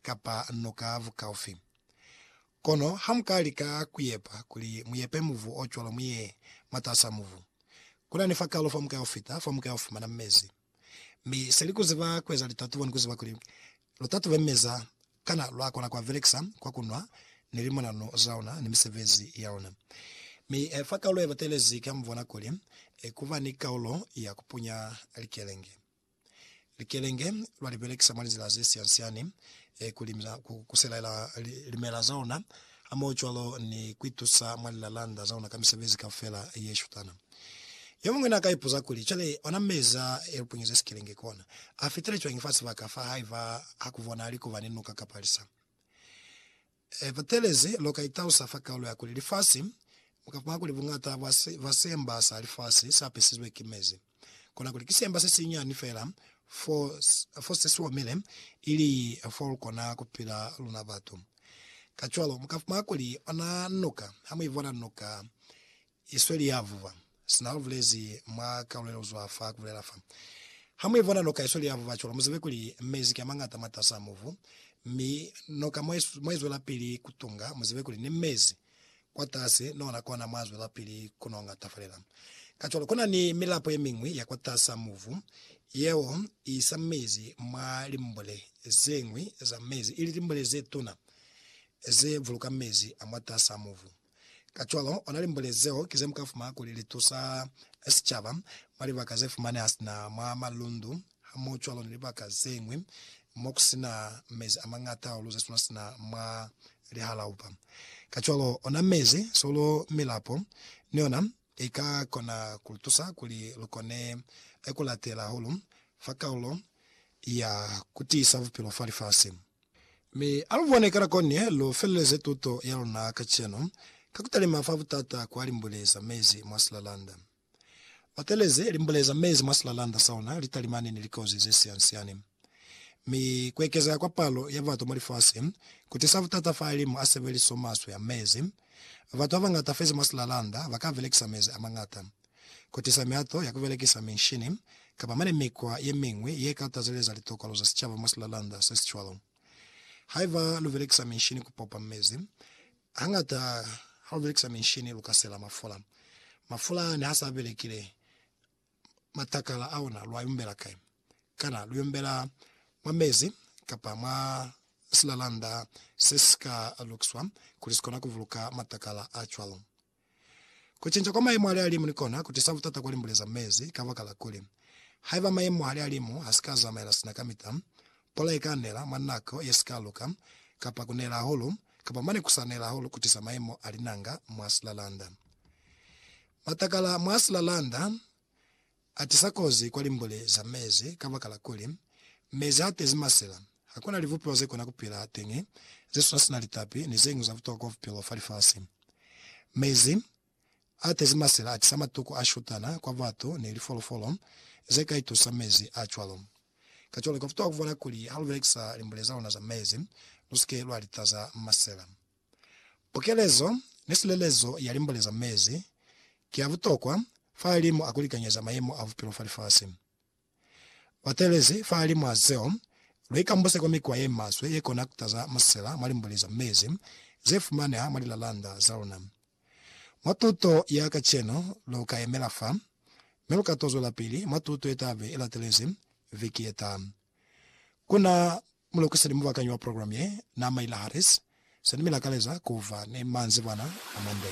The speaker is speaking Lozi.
kapa noka bukaufi. Kono hamuka lika kuyepa kuli muyepe mubu ocwalo muye mwataasa mubu, kunani fakalo famuka ufita famuka ufumana mezi. Mi seli kuziba kueza litatubo ni kuziba kuli lutatube meza kana lwakona kuabelekisa kwa kunwa ni limonano zaona ni misebezi yaona. Mi fakalo yebatelezi kamubona kuli kuba ni kaulo ya kupunya likelenge. Likelenge lwa li belekisa mwa lizila ze siansiani ku limisa ku kuselaela limela za ona, hamohocwalo ni ku itusa mwa lilalanda za ona ka misebezi kaufela ye shutana. Yomuñwi na ka ipuza kuli, Cwale, ona mezi a e lupunyeze sikelenge kona, a fitile cwañi fa sibaka fa haiba ha ku bonahali kuba ni nuka kapa lisa? E fetelezi, lu ka itausa fa kaulo ya kuli lifasi, mu ka fumana kuli buñata bwa si, bwa siemba sa lifasi sa pisizwe ki mezi. Kona kuli ki siemba se sinyani fela fo, fo se si omile, ili fo lu kona ku pila luna batu. Kacwalo, mu ka fumana kuli ona nuka, ha mu i bona nuka Isweli ya vuba. Sina lu bulezi mwa kalulo ye luzwa fa ku bulela fa. Ha mu ibona noka isweli ya vuba cwalo, mu zibe kuli mezi ki a mañata mwatas'a mubu, mi noka mwa i, mwa izwelapili ku tunga. Mu zibe kuli ni mezi kwatasi ni ona kona mwa zwelapili ku no ngatafalela. Kacwalo, kuna ni milapo ye miñwi ya kwatas'a mubu yeo i isa mezi mwa limbule ze ñwi za mezi, ili limbule ze tuna ze buluka mezi a mwatas'a mubu. Kacwalo, ona limbule zeo ki zemuka fumana kuli litusa sicaba mwa libaka zefumaneha sina mwa malundu hamohocwalo ni libaka zeñwi mokusina mezi amañata hahulu zesuna sina mwa lihalaupa. Kacwalo, ona mezi, solo, milapo, ni yona I ka kona ku lu tusa kuli lu kone ku latela hahulu fa kaulo ya ku tiisa bupilo fa lifasi. Mi a lu bone kana koñi lu feleleze tuto ya luna kacenu ka ku talima fa butata kwa limbule za mezi mwa silalanda. Batelezi, limbule za mezi mwa silalanda sa luna li talimani ni likozi ze siani-siani. mi kuekezea kwa palo ya batu mwa lifasi kutisa butata fa limu a sebeliso maswe a mezi. Batu babangata fezi mwa silalanda baka belekisa mezi amangata kutisa mihato ya kubelekisa minshini kapa mane mikwa yemiñwi yeka tazeleza litokolo za sicaba mwa silalanda sesicwalo. Haiba lubelekisa minshini kupopa mezi, hangata halubelekisa minshini luka sela mafula. Mafula nehasa abelekile, matakala a ona, lwa yombela kai? Kana lu yombela mwa mezi kapa mwa silalanda se si ka lukiswa kuli si kona ku buluka matakala a cwalo? Ku cinca kwa mayemo a lihalimu ni kona ku tisa butata kwa limbule za mezi kabakala kuli, haiba mayemo a lihalimu ha si ka zamaela sina kamita, pula i ka nela mwa nako ye si ka luka, kapa ku nela hahulu, kapa mane ku sa nela hahulu ku tisa mayemo a linanga mwa silalanda. Matakala mwa silalanda atisa kozi kwa limbuli za mezi kabakala kuli, mezi haatezi masela, hakuna libupiwa zekona kupila hateñi, zesuna sina litapi, ni zeñwi za butokwa bupilo fa lifasi. Mezi aatezi masela atisa matuku ashutana kwa batu ni lifolofolo zeka itusa mezi acwalo. Kacwalo, kabutokwa kubona kuli halubelekisa limbuli zaluna za mezi, lusike lwalitaza masela. Pukelezo ni silelezo ya limbole za mezi ki ya butokwa fahalimu a ku likanyeza mayemo a bupilo fa lifasi. Batelezi fahalimu a zeo, lu ikambuse kwa mikwa ye maswe ye kona ku taza musela mwa limbole za mezi ze fumaneha mwa lilalanda za luna. Mwa tuto ya kacenu lu ka yemela fa, mi lu ka to zwelapili mwa tuto ye ta be i latelezi viki ye taha. Ku na mulukiseli mubakanyi wa programu ye, Naamaila Harris, se ni mi lakaleza ku ba ni manzibwana a mande.